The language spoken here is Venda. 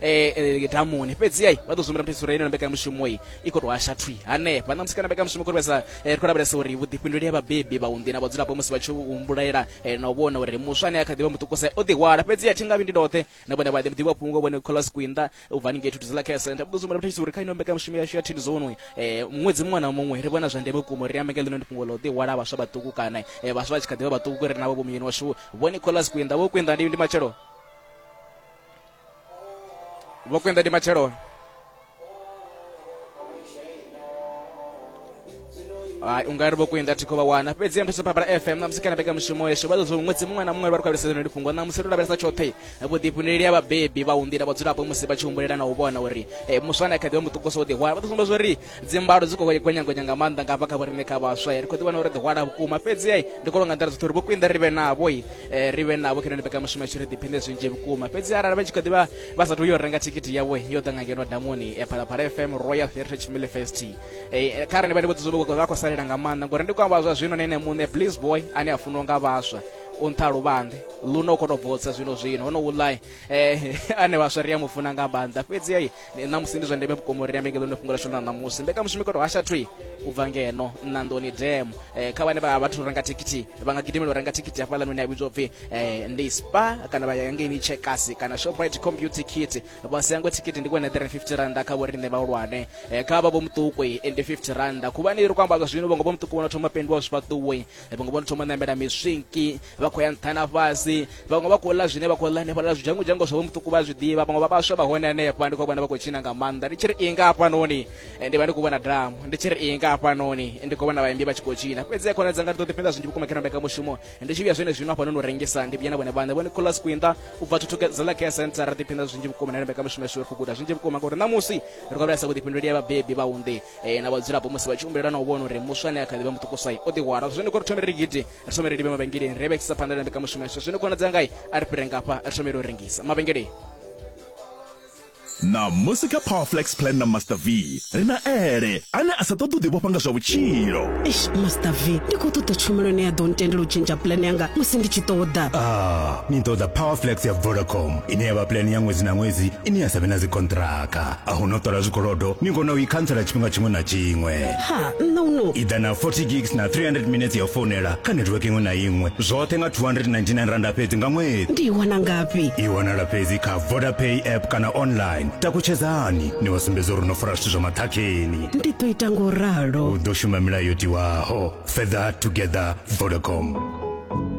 eh, eh, damuni fhedzi ai vha ḓo zwi muthetsa uri ino mbekanyamushumo i i khou tou hasha thwi hanefha na musi kana mbekanyamushumo khou vhesa ri khou lavhelesa uri vhuḓifhinduleli ha vhabebi vhaunḓi na vhadzulapo musi vha tshi humbulaela na u vhona uri muswa ane a kha ḓi vha muṱukusa o ḓihwala fhedzi a thi nga vhi ndi ndoṱhe na vhone vha ḓi ḓivha fhungo vhone kholas kwinda u bva haningei thuthu zila care center vha ḓo zwi muthetsa uri kha ino mbekanyamushumo yashu ya thini zonu ṅwedzi muṅwe na muṅwe ri vhona zwa ndeme vhukuma uri ambe nga ḽino ndi fhungo ḽa u ḓihwala vhaswa vhaṱuku kana vhaswa vha tshi kha ḓi vha vhaṱuku ri navho vho muyeni washu vhone kholas kwinda vho kwinda ndi matshelo vho kwenda ndi matshelo hai ungari vho kwenda thikho vha wana fhedzi nthu saphabala fm namusi kana beka mushumo yesho vha ḓo zwo ṅwedzi muṅwe na muṅwe vha ri khwabeliseza no lifhungo namusi ri lavhelesa tshoṱhe vhuḓifhinduleli ya vhabebi vha unḓila vhadzulapo musi vha tshi humbulela na u vhona uri eh, muswa na kha ḓivha muṱukuso u ḓihwala vha ḓo sumbedza uri dzimbalo dzi khou gwenyagonya nga maanḓa nga hafha kha vhorine kha vhaswa ri khou ḓi vhona uri ḓi hwala vhukuma fhedzi ai ndi khou longa nḓila dzoṱhe uri vho khwinḓa ri vhe navho i eh, ri vhe navho khenoni mbekamushumo yashu ri ḓiphinde zwinzhi vhukuma fhedzi arali vha tshi khou ḓivha vha sathu yo renga thikhithi yawe yo ḓa nga ngeno damoni eh, phalaphala fm royal heritage family fest eh, kha rani vha ndi vhodzizo vha khou salela nga maanḓa ngori ndi khou amba zwa zwino na ene muṋe bliss boy ane a funiwa nga vhaswa u nṱha luvhanḓe luno u khou tou bvotsa zwino zwino hono wulai um ane vhaswa ri a mu funa nga maanḓa fhedzi ai ṋamusi ndi zwa ndeme vhukuma uri ambe ngeno fhungo lashu ḽa ṋamusi mbekanyamushumo i kho to hasha thwi u bva ngeno ṋandoni dem eh, kha vhane vha vhathu renga thikhithi vha nga gidimela u renga thikhithi hafhaḽa noni a vhidzwa upfi eh, ndi spa kana vha ya ngeini chekasi kana shoprite compu thikhithi vha siyangwe thikhithi ndi kwene 350 randa kha vhoriṋe vhahulwane eh, kha vha vho muṱuku ndi 50 randa khuvhani ri kho amba zwino vhongo vho muṱuku vhono thoma pendiwa zwifhaṱuwe vhaṅwe vho no thoma ṋamela miswinki vha khou ya nṱha na fhasi vhaṅwe vha khou ḽa zwine vha khou ḽa hanefha ḽa zwidzhango dzhango zwavho muṱuku vha zwi ḓivha vhaṅwe vha vhaswa vha hone hanefha ndi khou vhona vha khou tshina nga maanḓa ndi tshi ri inga hafhanoni eh, ndi vha ndi khou vhona damu ndi tshi ri inga hafhanoni eh, ndi khou vhona vhaimbi vha tshi khou tshina fhedzi ya khona dzanga ndi ḓo ḓifhenda zwinzhi vhukuma kha mbeka mushumo eh, ndi tshi vhuya zwene zwino hafhanoni u rengisa ndi vhuya na vhone vhaṋe vhone kholas kwinda u bva thuthuke zala care center ra ḓiphinda zwinzhi vhukuma na mbeka mushumo yashu ri khou guda zwinzhi vhukuma ngauri ṋamusi ri khou vhulesa vhuḓifhinduleli ya vhabebi vhaunḓi e, na vhadzulapo musi vha tshi humbulela na u vhona uri muswa ane a kha ḓivha muṱukuswai o ḓihwala zwo zwino kho ri thome ri gidi ri thome ri livhe mavhengeleni ri vhekisisa phanḓa na mbekamushumo yashu zwino khonadza ngai a ri fhire ngafha ri thomele u rengisa mavhengeleni na musi kha powerflex plan na master v ri na ele ane a sa ṱoḓi u ḓivhofha nga zwa vhutshilo eish master v ndi khou ṱoḓa tshumelo ine ya ḓo ntendela u tshentsha plan yanga musi ndi tshi ṱoḓa a ah, ni ṱoḓa powerflex ya vodacom ine ya vha plan ya ṅwedzi na ṅwedzi ine ya sa vhe na dzikontraka a hu no ṱola zwikolodo ni kona u i khantsela tshifhinga tshiṅwe na tshiṅwe ha nṋa u no i ḓa na 40 gigs na 300 minutes ya u founela kha network iṅwe na iṅwe zwoṱhe nga 299 randa fhedzi nga ṅwedzi ndi i wana ngafhi i wanala fhedzi kha vodapay app kana online takutshedzani ni vha sumbedza uri no fara zwithu zwa maṱhakheni ndi ḓo ita ngo ralo u ḓo shuma milayo yo tiwaho further together vodacom